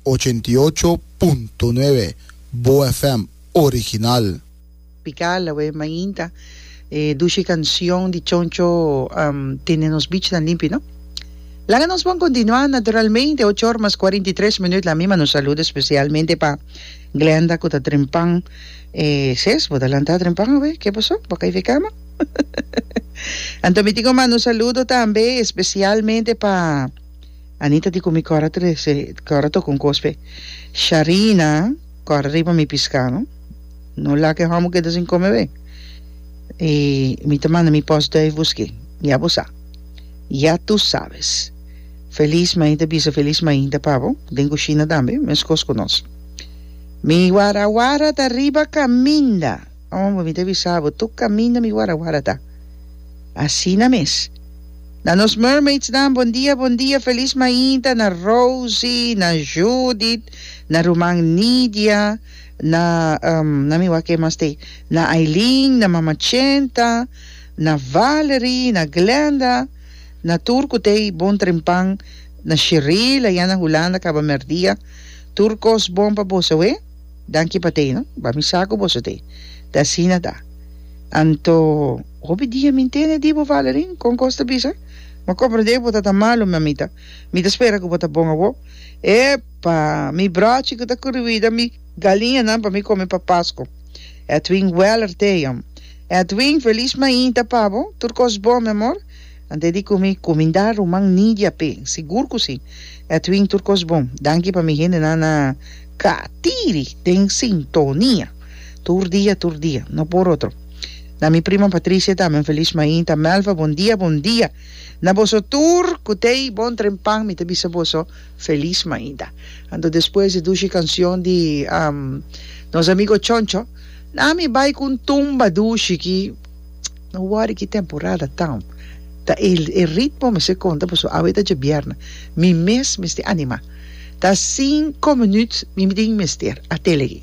Ochenta i ocho punto nuebe, Boa FM original. Pikal awe mainta e dushi kansyon di Choncho tene nos bichnan limpi no. Laga nos bon kontinuá naturalmente ocho or mas kuarenta i tres minüt la mima nos saludo spesialmente pa Glenda ku ta dren pan e ses bo ta lantá dren pan awe ke paso bo kai fe kama anto mi tin ku manda un saludo tambe espesialmente pa. Anita di cu mi cora trece cora toca un cos pe Sharina cora riba mi pisca no no laga e homo keda sin come be y mi ta manda mi post duif busque ya bo sa ya tu sabes feliz mainta bisa feliz mainta pa bo den cushina tambe mes cos cu nos mi wara wara ta riba caminda. Amo, mi ta bisa bo, tur caminda mi wara wara ta asina mes. Na nos mermaids nan, bon dia, bon dia, feliz mainta na Rosie, na Judith, na ruman Nidia, na ehm, nan mi wak e mas t'e, na Aileen, na mama Chenta, na Valerie, na Glenda, na tur cu t'e bon trempan, na Shiril, ayan na Hulanda caba merdia, tur cos bon pa boso, oe. Danki pa t'ei, no? Ba mi sa ku boso t'ei. Te asina ta. Anto, hopi dia mi ntende di bo, Valerie. Kon kos ta bisa? M'a komprendé ku bo ta ta malu, mamita. Mi ta spera ku bo ta bon awor. Epa! Mi bròchi ku ta kuriwida mi galiñanan pa mi kome pa Pasko. Edwin Weller t'ei, hombre. Edwin, felis mainta pa bo. Tur kos bon, mi amor. Ante di kumi kuminda ruman Nidia p'e? Sigur ku si. Edwin tur kos bon. Danki pa mi hendenan na Katiri den sintonia tur dia tur dia. No por otro. Na mi prima Patricia tambe un feliz mainta. Melva bon dia bon dia na boso tur ku t'ei bon tren pan mi ta bisa boso feliz mainta. Anto despues di dushi kansyon di nos amigo Choncho na mi bai ku un tumba dushi ki. No wòri ki temporada town ta e ritmo mester konta paso awe ta djebièrna mi mes mester animá ta cinco minut mi tin mester a telegi.